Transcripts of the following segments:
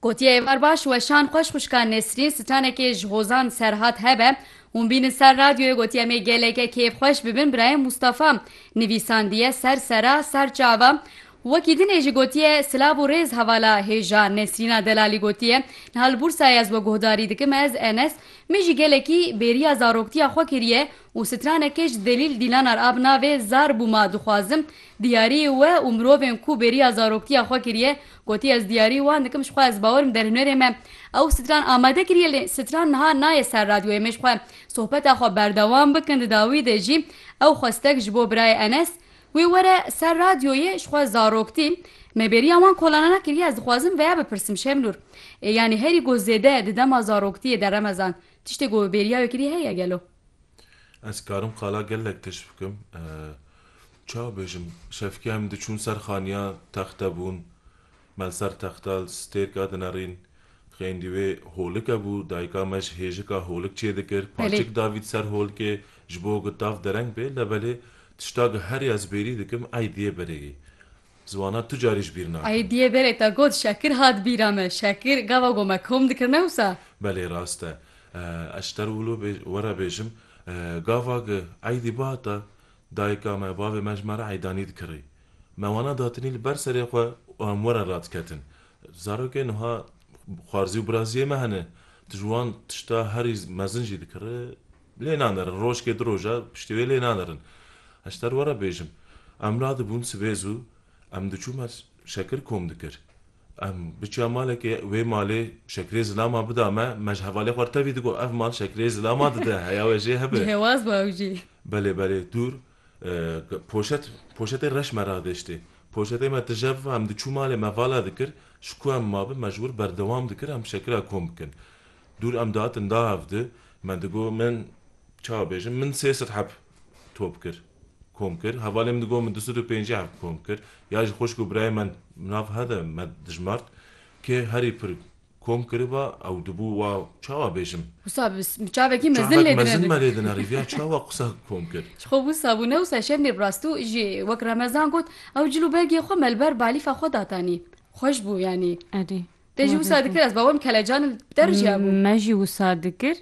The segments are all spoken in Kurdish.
Gotiye êvar baş weşan xweş xwişka Nesrîn sitanekê ji hozan Serhat hebe. Hûn bînin ser radyoyê gotiye em ê geleke kêfxweş bibin birayê Mûstafa nivîsandiye ser sera ser çava wekî din ê jî gotiye silav û rêz hevala hêja Nesrîna Delalî gotiye niha li Bûrsayê ez we guhdarî dikim ez Enes min jî gelekî bêriya zaroktiya xwe kiriye Û stranekê ji Zelîl Dîlanar a bi navê Zar bû ma dixwazim diyarî we û mirovên ku bêriya zaroktiya xwe kiriye gotiye ez diyarî wan dikim ji xwe ez bawer im derhunerê me ew stran amade kiriye lê stran niha nayê ser radyoyê me ji xwe sohbeta xwe berdewam bikin di dawî de jî ew xwestek ji bo birayê Enes wê were ser radyoyê ji xwe zaroktî me bêriya wan kolanana kiriye ez dixwazim veya bipirsim Şemnûr ê yanî herî ku zêde di dema zaroktiyê de remezan Tiştê ku bêriya wê kirî heye gelo? Ez karim qala gelek tişt bikim. Çawa bêjim? Şevkiya em diçûn ser xaniya texte bûn. Me li ser texta li stêrka dinerîn. Xêndî wê holike bû. Dayika me ji hêjika holik çê dikir. Paçik davî di ser holikê ji bo ku tav dereng bê. Lebelê tişta ku herî ez bêrî dikim, ey diyê berêkî. Ziwana tu carî ji bîr nakim. Aîdîyê berê te got şekir hat bîra me. Şekir gava ku me kom dikir ne wisa? Belê rast e. Ez ji te wilo were bêjim. Gava ku aîdî bihata dayika me, bavê me ji me re aîdanî dikirî. Me wana datinî li ber serê xwe û em werin radiketin. Zarokên wiha xwarzî û birazîyê me hene. Tu ji wan tişta herî mezin jî dikirî. Lê nanerin, rojkê du roj e, piştî wê lê nanerin. Ez te re were bêjim, em radibûn sibê zû, em diçûm ez Şekir kom dikir. Em biçiya malekê, wê malê Şekirê Zilama bida me, me ji hevalê xwe re tevî digot, ev mal Şekirê Zilama dide, heya we jê hebe. Cihêwaz bû ew jî. Belê belê, dûr. Poşet, poşetê reş me radiştî. Poşetê me tijev ve, em diçû malê me vala dikir, ji ku em mabin me ji wir berdewam dikir em şekira kom bikin. Dûr em dihatin da hev di, me digot min çawa bêjim min sê sed heb top kir, kom kir, hevalê min digot min du sed û pêncî heb kom kir, ya ji xwişk û birayê me nav he de me dijmart kê herî pir, Kom kiriba ew dibû wa çawa bêjim. Wisa bi çavekî mezin lê dinêrin. Çavek mezin me lê dinêrin riviya çawa qisa kom kir. Ji xwe wisa bûne wisa şevnê bi rastû jî wek Remezan got ew cil û bergê xwe me li ber balîfa xwe datanî. Xweş bû yanî. Erê. Te jî wisa dikir ez bawem kelecan li der jî hebû. Me jî wisa dikir.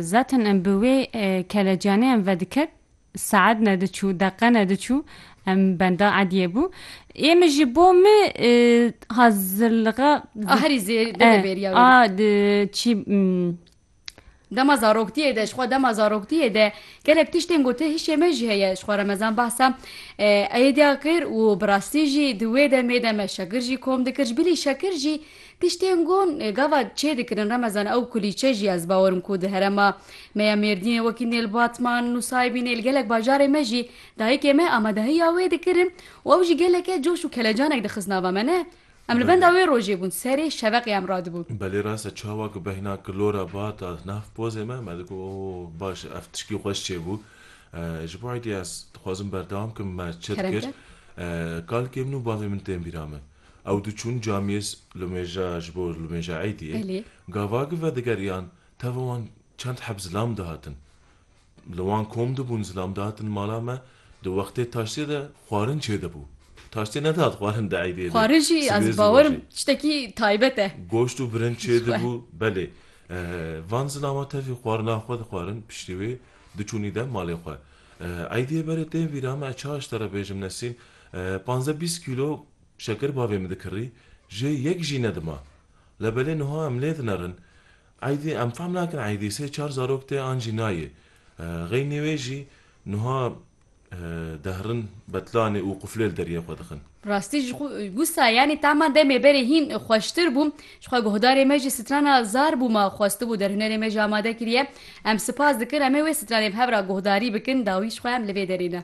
Zaten em bi wê kelecianeyan vedikevin. Saet nediçû, deqe nediçû em benda Ediyê bû. Ê min ji bo min hazirliga A herî zêde de bêriya wê. a çî Dema zaroktiyê de, jixwe dema zaroktiyê de gelek tiştên gotin hişê me jî heye. Jixwe remezan behsa Ediyê kir û bi rastî jî di wê demê de me şekir jî kom dikir. Ji bilî şekir jî Tiştên ku gava çê dikirin Remezan ew kulîçe jî ez bawer im ku di herema me ya Mêrdînê wekî Nêl Batman, Nusaybî Nêl gelek bajarê me jî dayikê me amadehiya wê dikirin û ew jî geleke coş û kelecanek dixist nava me ne? Em li benda wê rojê bûn serê şeveqê em radibû. Belê rast e çawa ku behna kilora bat a nav pozê me me digot oh baş e ev tişkî xweş çê bû. Ji bo êdî ez dixwazim berdewam kim me çi dikir. Kalkê min û bavê min tên bîra min. Ew diçûn camiyê Lumêja ji bo Lumêja Êdiyê, gavagî vedigeriyan tevî wan çend heb zilam dihatin. Li wan kom dibûn zilam dihatin mala me, di wextê taştê de xwarin çêdibû. Taştê nedihat xwarin di Êdiyê de. Xwarin jî ez bawer im tiştekî taybet e. Goşt û birinc çêdibû. Belê. Van zilama tevî xwarina xwe dixwarin, piştî wê diçûn îde malê xwe. Êdiyê berê tên vîra me, ez çawa ji te re bêjim Nesîn, Panze bîst kîlo şeker bavê min dikirî, jê yek jî nedima. Labelê niha em lê dinerin. Eydî em fehm nakin eydî sê çar zarok tê an jî nayê. Xeynî wê jî niha dehrin betlanê û quflê li deriyê xwe dixin. Rastî ji wisa yanî tama demê berê hîn xweştir bû. Jixwe guhdarê me jî strana zar bû ma xwestibû derhunerê me jî amade kiriye. Em sipas dikin em ê wê stranê bi hev ra guhdarî bikin dawî jixwe em li vê derê ne.